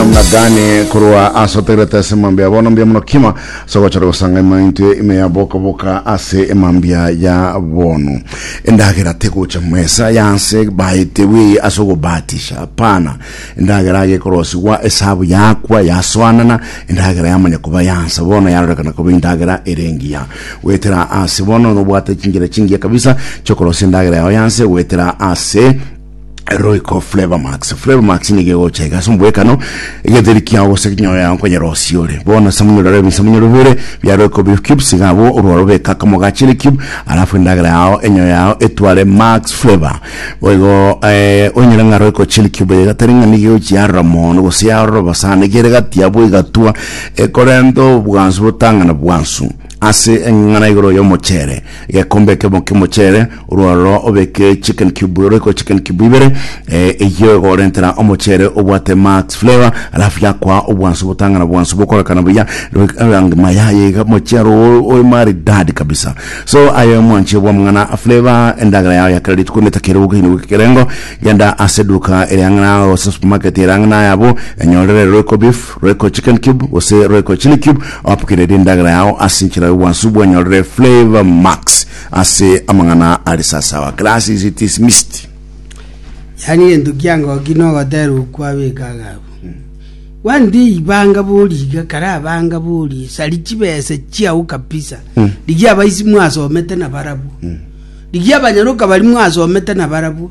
Gani korwa ase otegerete ase emambia bono mbia mono kima ase ogochora gosanga ema intwe ime ya boka boka ase emambia ya bono endagera tegocha mesa yanse baete bweye ase ogobatisha pana endagera age ekorosigwa esabu yakwa yasoanana endagera yamanya koba yansa bono yarorekana koba endagera erengiya goetera ase bono nobwate chingira chingiya kabisa chokorosia endagera yao yanse goetera ase Royco Flavor Max. Flavor Max niga egocha iga ase omobwekano egetheri kiao gose ekenyoro yao nkonyera osie ore. Bono ase omonyororo ebisamunyo bibere bia Royco Beef Cubes iga abwo orwao beka akamo ga chili cube alafu endagera yao enyoyo yao etware Max Flavor. Boigo eh, onyore ng'a Royco chili cube eye gatari ng'a niga egochi yarora mono gose yarora obosana iga ere gati abwo egatwa ekorenta obwansu botang'ana bwansu. ase eng'ana igoro y'omocheere, egekombe ekemo ki'omocheere, orwaroro obeke chicken cube roiko chicken cube ibere, eh, eyio egorentera omocheere obwate max flavour, alafu yakwa obwansu botang'ana bwansu bokorekana buya, roik- rangi maya yaiga omocheere oo oe maridadi kabisa. So aye mwanche bw'amang'ana a flavour, endagera yao ya kera rituko netakere gokeina goika ekerengo, genda ase eduka ere ang'e nawe gose supermarket ere ang'e naye abwo, enyorere roiko beef, Royco Chicken Cube gose Royco Chili Cube apokereri endagera yao ase enchera y'obwansu bwanyorire Flavor Max ase amang'ana are sasawa Glasses it is mist. Yaani gento kiangoki nogotera okwo abeke agabu. One day banga bori iga kara banga bori sari chibesa chiao kabisa. Rigi abaisi mwasomete na barabwo. Rigi abanyaroka bari mwasomete na barabwo.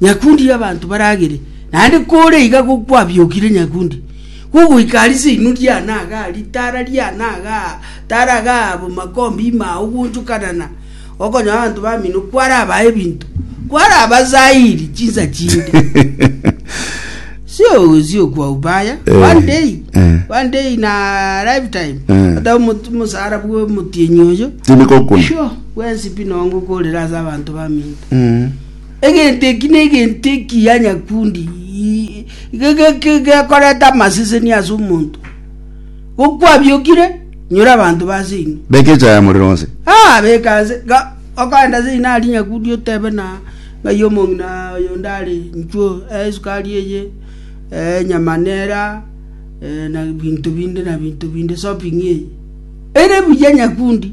nyakundi y'abanto baragere, naende kore iga gokwabiokire nyakundi, gogoika aria seino riane agaa, ritaara riane agaa, taara agaa abo makombe ime ao gwonchokanana, okonyora abanto bamino kwarabae ebinto, kwarabasairi chinsa chinde. sio sio kwa ubaya Eh, one day eh. one day in a lifetime Eh. ata omot- omosara bwa omotienyi oyo Tindi kokuna. sure wensi pi nongo korera ase abanto baminto Mm. Egento eki negento ekiya nyakundi, gekoreta amaseseni ase omonto. Gokwabiokire, nyora abanto base inwe. Beka echaye morero onse. Ah, beka ase ga okogenda ase ina aria nyakundi otebe na ng'ai omong'ina oyo onde are nchuo eh esukari eye eh enyama nera eh na binto binde na binto binde shopping eye. Ere buya nyakundi.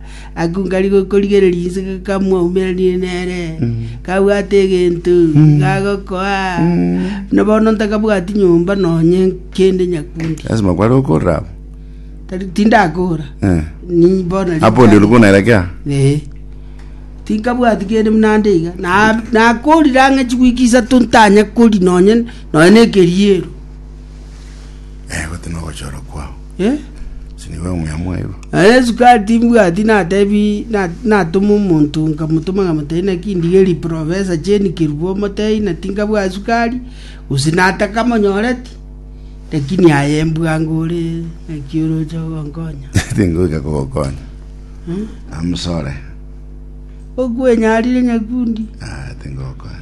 Agakung'ani gokorigereria inse gakamwaumerania nere, kabwate egento gagokoa, buna bono ntakabwati nyomba nonye kende nyakundi. Lazima kware okorora abo. Tari tindakora. Eh. Ni bono riri Hapo ndio ulikuwa unaelekea? Eh. Tinkabwati kende buna nde iga. Na nakorire ang'e chigwiki isato ntanye kori nonye nonye na ekeriero. Eh, gote nogochora kwao. Eh? Ase nigo omuya mwaigwa. Na Yesu kare timbwati natebi na- natoma omonto nkamotoma nkamotebia naki ndigeri profesa Jane Kerubo omotei na tinkabwati sukari gose nataka monyoreti lakini aye mbwango ore naki oroche ogonkonya Tingoika kogokonya. Amusore. okwenyarire nyakundi Ah, tingokonya.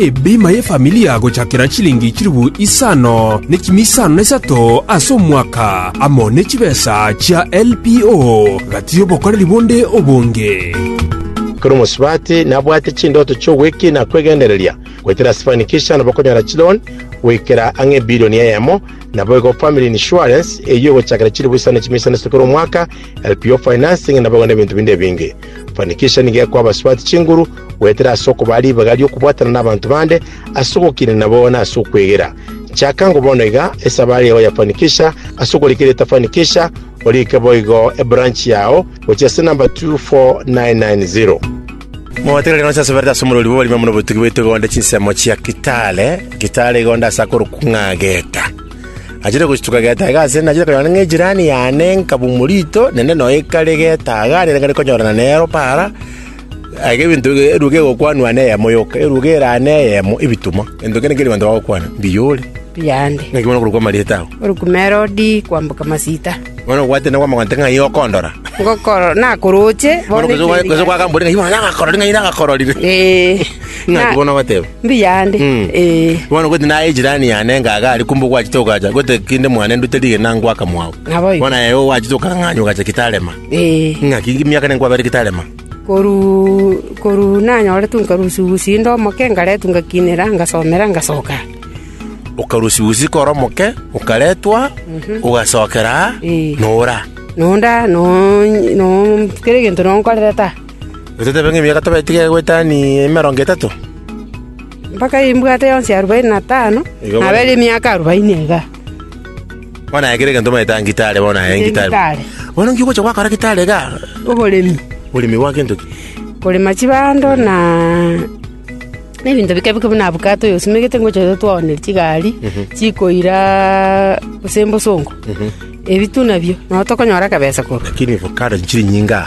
Ebima y'efamilia gochakera chilingi chilifu isano ne chimi isano na isato ase omwaka, amo ne chibesa chia LPO, gati y'obokoreri bonde obonge. Ekero omosubati nabwate chindoto chi'ogwekina na kwegendereria, goetera Sifanikisha nabo okonyora chiloan goikera ang'e ebilioni eyemo. Naboigo Family Insurance eyio egochakera chilifu isano ne chimi isano na isato kera omwaka, LPO Financing naboigo nebinto binde ebinge. Fanikisha nigo ekoa abasubati chinguru Goetera ase okobaa ribaga ri'okobwatana nabanto bande, ase ogokiina nabo, na ase okwegera. Chaka ngo bono iga, esaba aria oyafanikisha, ase okorika eria etafanikisha, orike boigo ebranch yao, gochia ase number 24990. Mogotegerere rero inse asoberete ase omorori bw'oborimo buna obotugi bwaito iga onde chinsemo chia Kitale, Kitale iga onde ase akorokwa ng'a Geta. Nachire gochituka Geta iga ase nachire konyora ng'a ejirani yane nkabumwa rito, naende noyo ekare Geta iga, nigo nare konyorana nero para, Aye ebinto ebiya bigokwanwa neyemo yoka, eruga eraa neyemo ebitumwa. Gento kende keria abanto bagokwana, mbiyore. Biyande. Naki bono okorokwa amarieta ao? Orokwa Herodi, kwamboka masita. Bono nobwate na kwamagonte ng'ai okondora? Ngokoro, nakoroche. Bono gose kwa- gose kwagambore ng'ai bono nagakororire, ng'ai nagakororire. Ee. Ng'aki bono ogateba? Mbiyande. Mm. Ee. Bono goti naye ejirani yane ngaga ari kumbe ogwachete ogacha gote kinde mwane ndute rigena ngwaka mwao. Naboigo. Bono aye ogwachete okang'anywa ogacha kitarema. Ee. Ng'aki emiaka ere nkwabere gitarema? Koruu, koruu nanyoretwe nkarusia usi inde omoke, ngaretwa ngakinera, ngasomera, ngasoka aa. Okarusia usi kore omoke, okaretwa, ogasokera aa, Ee. na ore aa. Na onde aa, na onye- na on- kera egento na onkorerete aa. Ototebe ng'a emiaka tobaete iga egoetani emerongo etato? Mpaka imbwate yonsi arubaini na tano, Iga bono. nabere emiaka arubaini iga. Bono aye kera egento omanyete aa gitari, bono aye gitari. Gitari. Bono inki ogocha gwakora gitari iga? Oboremi. Oboremi bwa gento ki? Korema chibando na na ebinto bike bike buna avocado oyo osimegete ngocha iga twaonire chigari chikoira gose mbosongo. Ebi tu nabio. Nabo tokonyora akabesa korwa. Lakini avocado nchiri nyinga.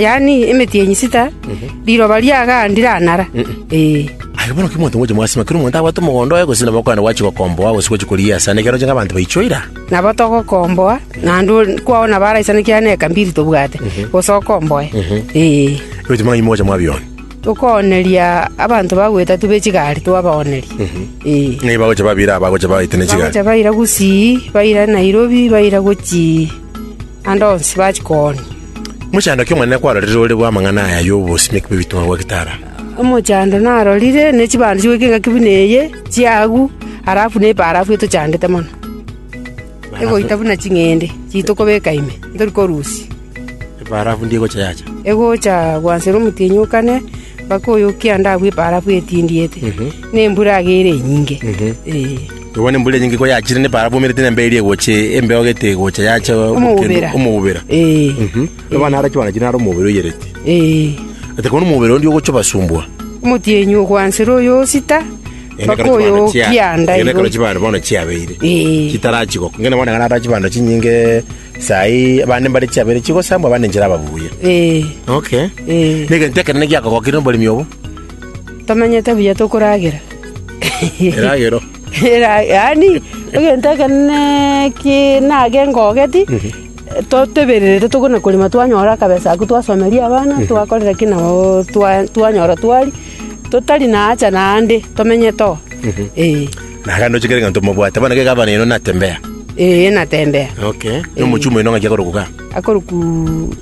yaani emeti ye nyisita, riroba riagandi ranara. Aye bono ki monto mwache mwasima? Kera omonto abwate omogondo oye gose nabo okogenda gwachi gokomboa gose gwachi korigia asare, nekeroche ng'a abanto baichwe ira. Nabo togokomboa, naende onde kwao nabo araisane ekiagera na eka mbiri tobwate, gose okomboe. Ee. Oboetie mang'ana inwe mwacha mwabionia. Okooneria abanto bagwetatu be chigari twabooneria. Ee. Ng'ai bagocha babira aba bagocha baetania chigari? Bagocha baira Gusii, baira Nairobi, baira gochii. naende onsi bachia koonia. Omochando okia Omonene kwarorire ore bw'amang'ana aya y'obosimi bwe bitunwa bwa gitara. Omochando narorire ne chibando chigoika engaki buna eye chiagu, arafu ne ebarafu etochandete mono, egoita buna ching'ende chiito kobeka ime, ntori korusia. Ebarafu ndi egocha yacha? Egocha gwansa ere omotienyi o kane, mpaka oyokia ande agwo ebarafu etindiete, ne embura agere enyinge. Ee. Igwa ne mbura enyinge ko yachire ne barabu emerete na emberi egocha embeo gete egocha yacha Omobera. omobera. Ee. Mhm. Abana arachie banachi naro omobera oyerete. Ee. Ate kono omobera ondi ogocha obasumbua. Omotienyi ogwansera oyosita, mpaka oyokianda Ene igo. karo chibando bono chiabeire. Ee. Chitarachi gokwa. Ngende bono ekero arachi bando chinyinge sai abande mbare chiabeire chigosambwa abande nchera ababuya. Ee. Okay. Ee. Negento ekenene giakogokire oboremi obo. Tomanyete buya tokoragera. Eragero. Yaani egento ekenene ki nage ngogeti, totebererete tokona korema twanyora akabesa ako twasomeria abana, twakorera ki nabo twa- twanyora twari, totari na hacha naende, tomenyete oo. Eeh. Na rende ochikere ng'a ntomobwate, bono iga gavana oino natembea. Eeh natembea. Okay. Na omochie omoino ng'aki akorokwa igaa. Akorokwa.